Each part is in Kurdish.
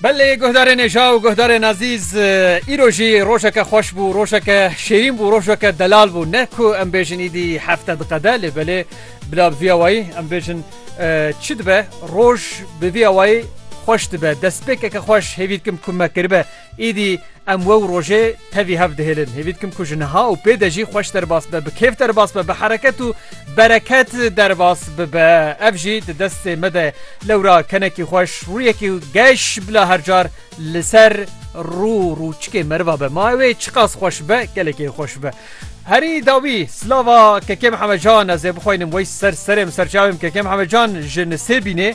Belê guhdarê nêja û guhdarên ezîz îro jî rojeke xweş bû rojeke şêrîn bû rojeke delal bû ne ku em bêjin îdî hefte diqede lê belê bila bi vîya wayî em bêjin çi dibe roj bi vîya wayî xweş dibe destpêkeke xweş hêvî dikim ku me kiribe Êdî em wew rojê tevî hev dihêlin. Hêvî dikim ku ji niha û pê de jî xweş derbas be, bi kêf derbas be, bi hereket û bereket derbas bibe. Ev jî di destê me de ye. Lewra kenekî xweş, rûyekî geş bila her car li ser rû û rûçikê meriva be. Ma ew ê çiqas xweş be, gelekî xweş be. Herî dawî silava Kekê Mihemed Can ez ê bixwînim wey ser serê min, ser çavê min Kekê Mihemed Can ji Nisêbînê.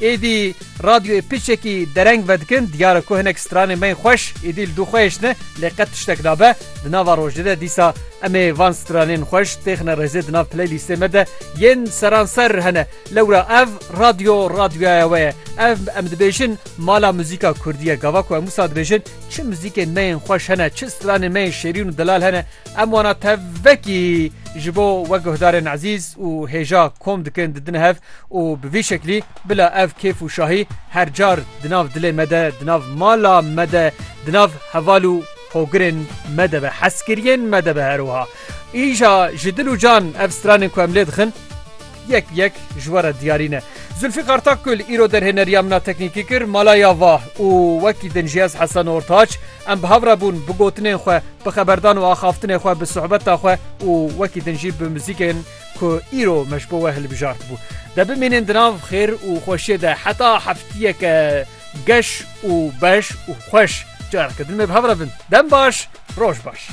Êdî radyoyê piçekî dereng vedikin, diyar e ku hinek stranên me yên xweş êdî li dû xwe hêştin e, lê qet tiştek nabe. Di nava rojê de dîsa em ê van stranên xweş têxine rêzê di nav playlîstê me de yên seranser hene. Lewra ev radyo radyoya we ye. Ev em dibêjin mala muzîka kurdî ye. Gava ku em wisa dibêjin çi muzîkên me yên xweş hene, çi stranên me yên şêrîn û delal hene, Em wana tev vekî ji bo we guhdarên ezîz û hêja kom dikin didin hev û bi vî şeklî bila ev kêf û şahî her car di nav dilê me de, di nav mala me de, di nav heval û hogirên me de be, hezkiriyên me de be her wiha. Îja ji dil û can ev stranên ku em lê dixin, Yek bi yek ji we re diyarî ne. Zûlfîkar Takgul îro derhêneriya min a teknîkî kir, mala ya va û wekî din jî ez Hesen Ortaç, em bi hev re bûn bi gotinên xwe, bi xeberdan û axaftinê xwe, bi suhbeta xwe û wekî din jî bi muzîkên ku îro me ji bo we hilbijartibû. De bimînin di nav xêr û xweşiyê de heta heftiyeke geş û beş û xweş. Careke din me bi hev re bin. Dem baş, roj baş.